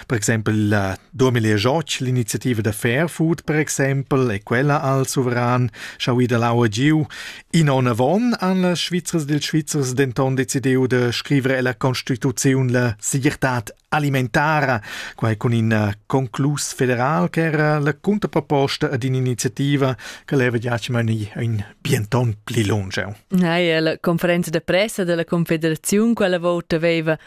Per exempel la 2008 l'iniziativa da Fairfood per exempel e quella al suveran schau ida l'aua giu. In onn avon han las Svizzers dils Svizzers denton decidiu da scrivere la Constituzione la segirtad alimentara, quai con in eh, conclus federal che era la cunterproposta ad un'iniziativa che leva giace mani un bienton pli lungiu. Nei, la conferenza de pressa della Confederazione quella volta aveva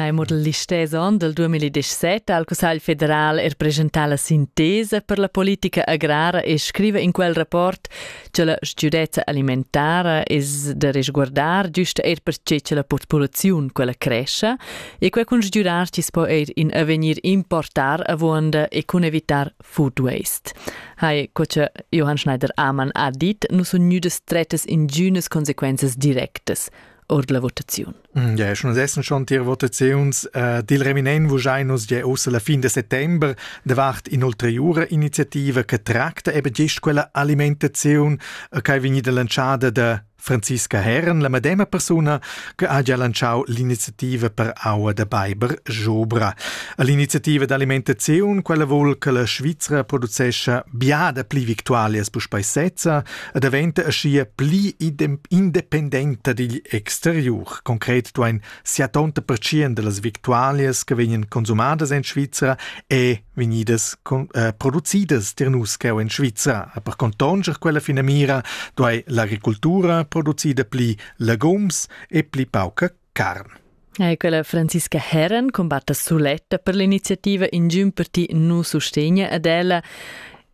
Neu model listess onn del 2017 ha il Cussegl federal er presentà la sintesa per la politica agrara e scriva in quel rapport che la sgiudezza alimentara es da resguardar giusta er perche che la populaziun quella crescia e quel cun sgiurar ci po er in avegnir importar avuonda e cun evitar food waste. Hai coce Johann Schneider-Amann ha dit, nu sun gnüdas strettas ingiünas consequenzas directas. ord la votaziun. Mm, ja, schon essen schon die Votations äh, dil Reminen vuschainos je ossa la fin de settembre davart inoltre jura iniziativa che tracta eben gest quella alimentazione äh, che vegni da lanciada de Franziska Herren, la medema persona che ha già lanciato l'iniziativa per aua da Beiber Jobra. L'iniziativa d'alimentazione, quella vuol che la Svizzera producesce biada pli victuali as puspei sezza, e daventa aschia pli independenta digl exteriur. Concret duein 70 percent dallas victualias che vegnan consumadas en Svizra e vegnidas con, eh, producidas tier nus cheu en Svizra. E per contonscher quella finamira duei l'agricoltura producida pli legums e pli pauca carn. E quella Franziska Herren combatta suletta per l'iniziativa Ingiun per ti nu sustegna ad ella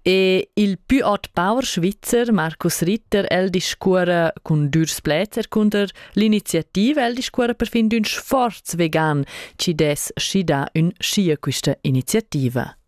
e il più hot power svizzer Markus Ritter el discuora cun dürs pläzer cunter l'iniziativa el discuora per fin d'ün sforz vegan chi dess schidar ün schia quista iniziativa.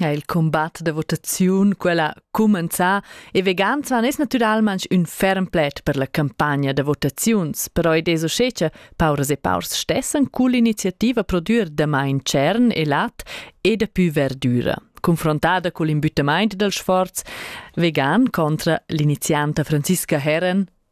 ha il combat da votaziun quella cumenzà e vegans van es natüralmaing ün ferm pled per la campagna da votaziuns, però id es uschè cha pauras e paurs stessan cull'iniziativa prodür damain tschern e lat e dapü verdüra. Confrontada cul imbüttamaint dal sforz, vegan contra l'inizianta Franziska Herren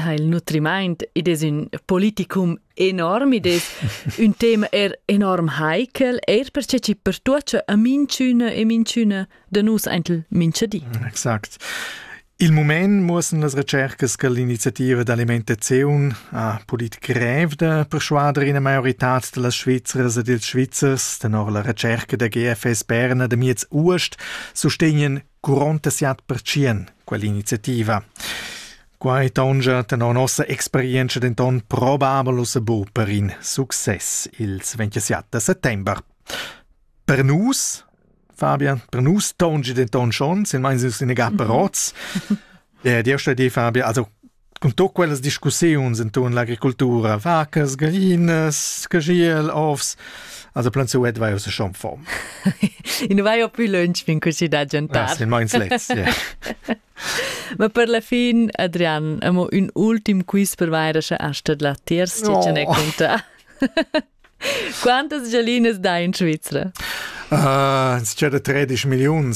ha il nutrimaint id es ün politicum enorm, id es ün tema er enorm heikel, eir perche chi pertuocha a minchüna e minchüna da nus aintel mincha di. Exakt. Il mument muossan las recercas che l'iniziativa d'Alimente Zeun ha pulit grev da persuader ina maioritad da las Svizzers ed ils Svizzers, tenor la recerca der GFS Berna de miez Uost, sustegnen Curonta siat pertschien quell'iniziativa. Quai taungia tenor nossa experienza denton probabel ussa bu per in success ils 27 da settember. Per nus, Fabian, per nus taungi denton schon, silmeins nus in egar per oz. Ed jeu stedi Fabio, also cun tut quellas discussiuns inton l'agricultura, vacas, galinas, cagiel, ovs, also plönsü et vai uss schon fom. I nu vai più lunch fin cusì da gentar. Ah, sì, meins lets, yeah. Ma per la fin, Adrian, amo un ultim quiz per vaira sche asta la terz, oh. ce ne conta. Quantas galinas dai in Svizzera? Uh, ah, c'è da 13 milions